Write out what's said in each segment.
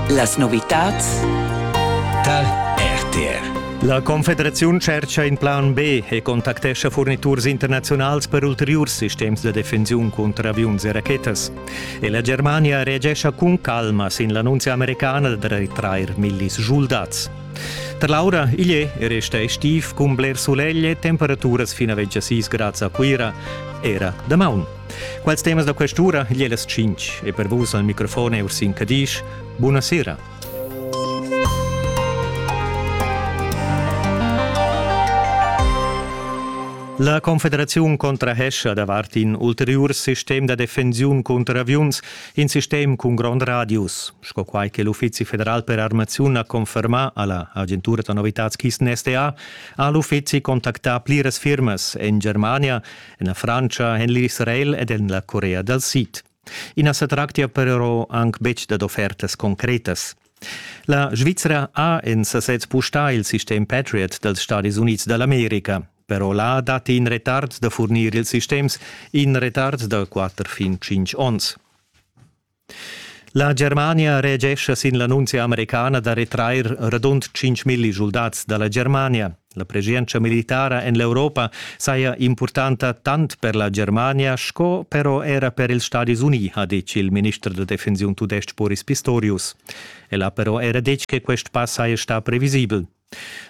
Las novitads tar RTR. La Confederaziun tschercha in plan B e contactescha furniturs internaziunals per ulteriurs sistems da defensiun cunter aviuns e rachetas. E la Germania reagescha cun calma sin l'annunzia americana da retrair millis soldats. Per l'aura igl è e resta estiv cun bler sulegl e temperaturas fino a 26 grads a Cuira, era damaun. Quels temas da quest'ura gli las 5 e per vus al microfon è Ursin Cadisch. Buonasera. La Confederaziun contrahescha davart in ulteriur sistem da defensiun cunter aviuns, in sistem cun grond radius, sco quai che l'Uffizi federal per armaziun ha confermà alla agentura da novitads KISN-SDA, ha l'uffizi contactà pliras firmas en Germania En la Frantscha en l'Israel ed en la Corea dal Sid. I na sa tractia però anc betg dad offertas concretas. La Svizzera ha en sasez pustà il sistem Patriot dals Stadis Unids da l'America. Però là datti in retard da furnir ils sistems, in retard da 4 fin 5 onns. La Germania reagescha sin l'annunzia americana da retrair radund 5.000 schuldats da la Germania. La preschientscha militara en l'Europa saja impurtanta tant per la Germania sco però era per ils Stadis Unì, ha detg il minister da defensiun tudestg Boris Pistorius. El ha però era detg che quest pass saja stà previsibel.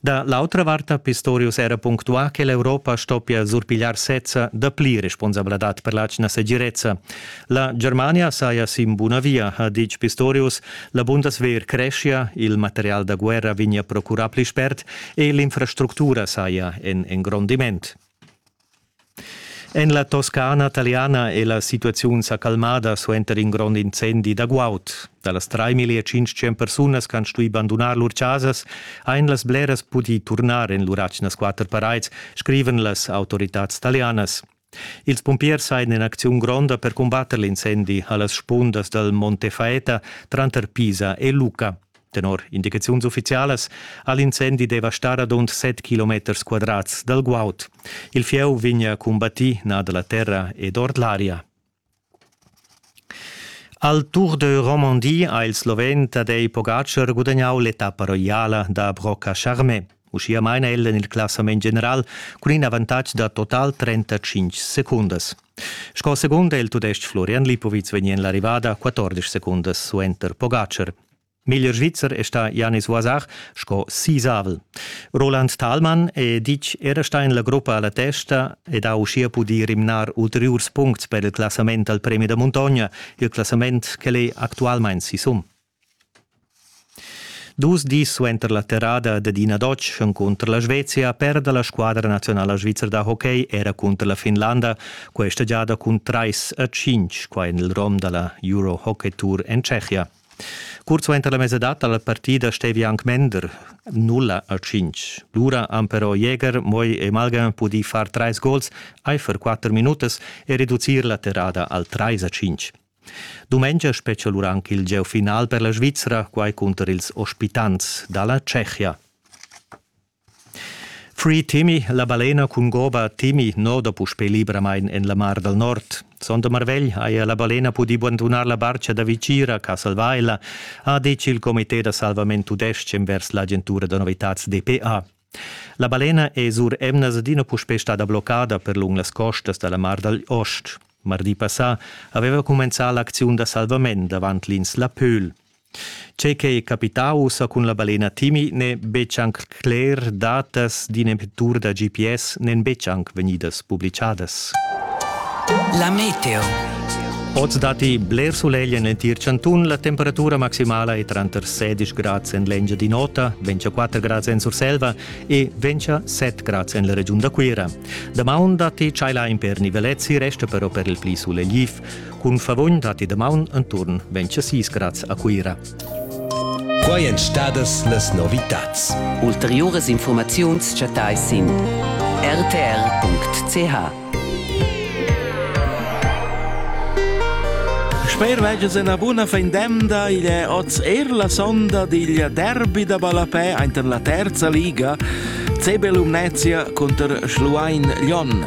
Da l'autra vart ha Pistorius era punctuà che l'Europa stoppia surpigliar sezza dapli responsabladad per l'atgna segirezza. La Germania saja sin buna via, ha ditg Pistorius. La Bundeswehr creschia, il material da guerra vegnia procurà pli spert e l'infrastructura saja en engrondiment. En la Toscana taliana è la situaziun sa calmada suenter in grond incendi da guaud. Da las 3.500 persunas che han stuì bandunar lur chasas han las bleras pudì turnar en lur atgnas quatter paraids, scrivan las autoritads talianas. Ils pumpiers ein en acziun gronda per combatter l'incendi a las spundas dal Monte Faeta tranter Pisa e Lucca. Tenor indicaziuns uffizialas ha l'incendi devastà radund set kilometers quadrats dal guaud. Il fieu vegnia cumbattì nà da la terra ed ord l'aria. Al Tour de Romandie ha il sloven Tadej Pogacar gudagnau l'etappa roiala da Brocca Charmé. Uschia maina el en il classament general cun in avantatg da total 35 secundas. Sco segund è il tudestg Florian Lipovic vegni en l'arrivada 14 secundas suenter Pogacar. Meglier Svizzer è stà Janis Wasach sco sisavel. Roland Thalmann è ditg era stà en la gruppa alla testa ed ha uschia pudì rimnar ulteriurs puncts per il classament al premi da muntogna, il classament ch'el è actualmain sisum. Dus dis suenter la terrada dad ina Dotsch cunter la Svezia perda la squadra nazionala svizra da hockey era cunter la Finlanda questa giada cun trais a cinc, qua en il rom da la Euro Hockey Tour en Tschechia. Curt suenter la mesadad dalla partida stevi anc mender nulla a cinc. Lura han però Jäger, Moi e Malga pudì far trais gols eifer quatter minutas e reducir la terrada al trais a cinc. Dumengia spetga lura anche il gieu final per la Svizzera, quai cunter ils ospitants dalla Tschechia. Free Timi, la balena cun goba Timi noda puspè libramain en la Mar dal Nord. Sonda marvegl haja la balena pudì bandunar la bartga da Vigira, Castelvaila, ha detg il comité da salvament tudestg envers l'agentura da novitads DPA. La balena è sur emnas adina puspè stada bloccada per lung las costas da la Mar dal Ost. Mardi passà aveva cumenzà l'acziun da salvament davant l'ins La Pöhl. Tgei ch'ei capitau ussa cun la balena Timi n'è betg anc cler, datas d'in emettur da GPS n'èn betg anc vegnidas publicadas. La meteo. Oz datti bler sulegl en l'entir chantun. La temperatura maximala è tranter 16 grads en l'Engiadin'Ota, 24 grads en Surselva e 27 grads en la regiun da Cuira. Damaun datti tschailain per nivelezzi, resta però per il pli sulegl Cun favogn datti damaun enturn 26 grads a Cuira. Quai èn stadas las novitads. Ulteriuras infurmaziuns chattais sin rtr.ch. Sper veges ena buna fendemda igl è oz er la sonda digl derby da ballapè ainten la terza liga. Cebel Umnezia cunter Schluein Lyon.